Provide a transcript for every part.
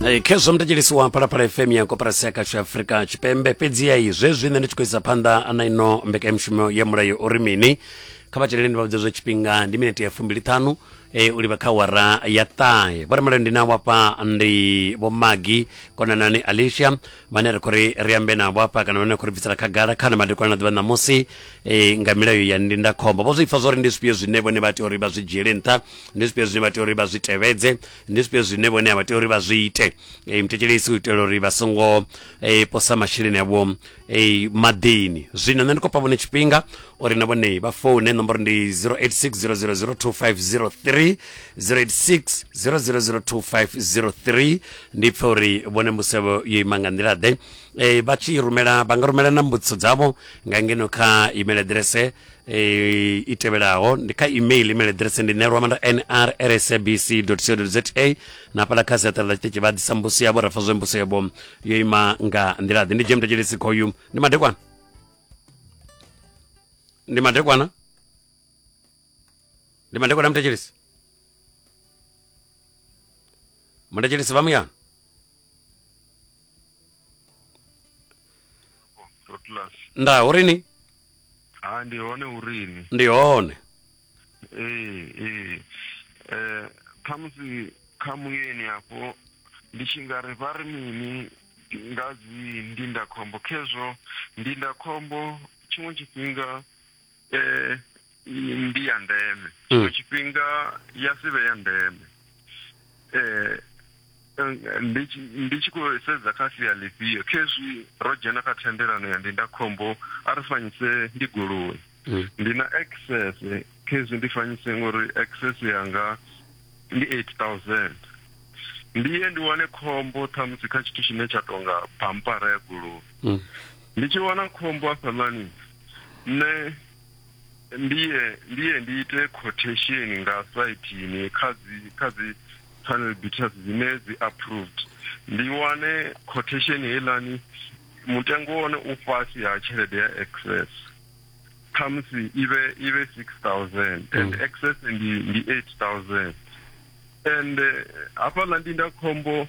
Eh, khezwo mthetshelesi wa phalaphala fm ya koperasi ya kashu afurika tshipembe fhedzi yayi zwezwi nṋe ndi tshi khou isa phanḓa na ino mbekanyamushumo ya mulayo uri mini kha vha tsheleleni vha vhudze zwa tshifhinga ndi minete ya fumbiliṱhanu e, u livha kha wara ya ṱahe vho remalayo ndi na wafha ndi vho magi konanani alicia vhane ri khou ri ri ambe navho afha kana vhane ri khou ri bvisela khagala khana madekwana na ḓuvha ṋamusi e, nga milayo ya ndindakhombo vho zwi pfa zwo ri ndi zwifhio zwine vhone vha tea uri vha zwi dzhiele nṱha ndi zwifhio zwine vha tea uri vha zwi tevhedze ndi zwifhio zwine vhone a vha tea uri vha zwi ite e, muthetshelesi u itela uri vha songo e, posa masheleni avho e, maḓini zwino nṋe ndi khou fha vhone tshifhinga uri na vhone vha foune nomboro ndi 0860002503 0860002503 ndi pfa uri vhone mbudziso yavho yo ima nga nḓila ḓe e, vha tshi rumela vha nga rumela na mbudziso dzavho nga ngeno kha email aḓirese e, i tevhelaho ndi kha email email address ndi nelwamanda nrsabc co za na hafhaḽa kha siaṱari ḽa tshiṱitshi vha ḓisa mbusi yavho ra pfa zwe mbusi yavho yo ima nga nḓila ḓi ndi dzhie mutetshelesi khoyu ndi madekwana ndi madekwana ndi madekwana mutetshelesi mutetshelesi vha muyana Rotlas. nda uri ni Ha ndi hone urini. ndi hone Ee ee. Eh khamusi kha muyeni afho ndi tshi nga ri vha ri mini nga dzi ndindakhombo khezwo ndindakhombo tshiṅwe tshifhinga eh, ndi ya ndeme tshiṅwe mm. tshifhinga ya si vhe ya ndeme eh, ndi tshi khou sedza kha sia ḽifhio khezwi ro dzhena kha thendelano ya ndindakhombo a ri fanyise ndi goloi mm. ndi na access khezwi ndi fanyise ngori access yanga ndi 8000 ndiye ndi wane khombo ṱhamusi kha tshithu tshine tsha tonga pampara ya goloi mm. ndi tshi wana khombo afhaḽani Nṋe ndiye ndiye ndi ite quotation nga saithini kha dzi kha dzi panel beaters dzine dzi approved ndi wane quotation heilani mutengo wone u fhasi ha tshelede ya excess khamusi ive ive 6000 and mm. excess ndi ndi 8000 and eh, hafhaḽa ndindakhombo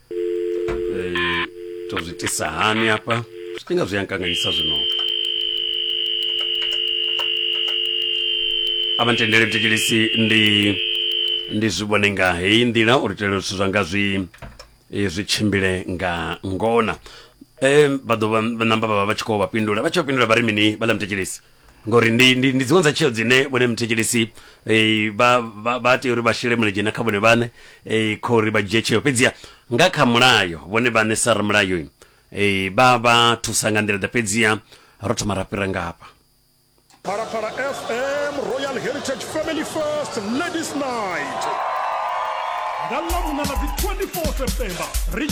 Eh, tozvitisa hani apa zvitinga zviyankanganyisa zvino apa nditendere mtekelisi ndi ndi zvivone nga heyi ndila uri tele zwithu zwanga zwi eh, zwi tshimbile nga ngona um vha ḓo vha namba vha vha vha tshi khou vha pindula vha tshi vha pindula vha ri mini vha ḽa mtekelisi ngori ndi ndi ndi dziṅwe dza tsheo dzine vhone muthetshelesi eh, vha vha- vha tea uri vha shele mulenzhe na kha vhone vhane eh, kha uri vha dzhie tsheo fhedziha nga kha mulayo vhone vhane sa ramulayo eh, vha vha thusa nga nḓila ḓa fhedziha ro thoma ra fhira ngafha Parapara FM Royal Heritage Family First Ladies Night. Nga ḽa vhuṋa ḽa dzi 24 September ri tshi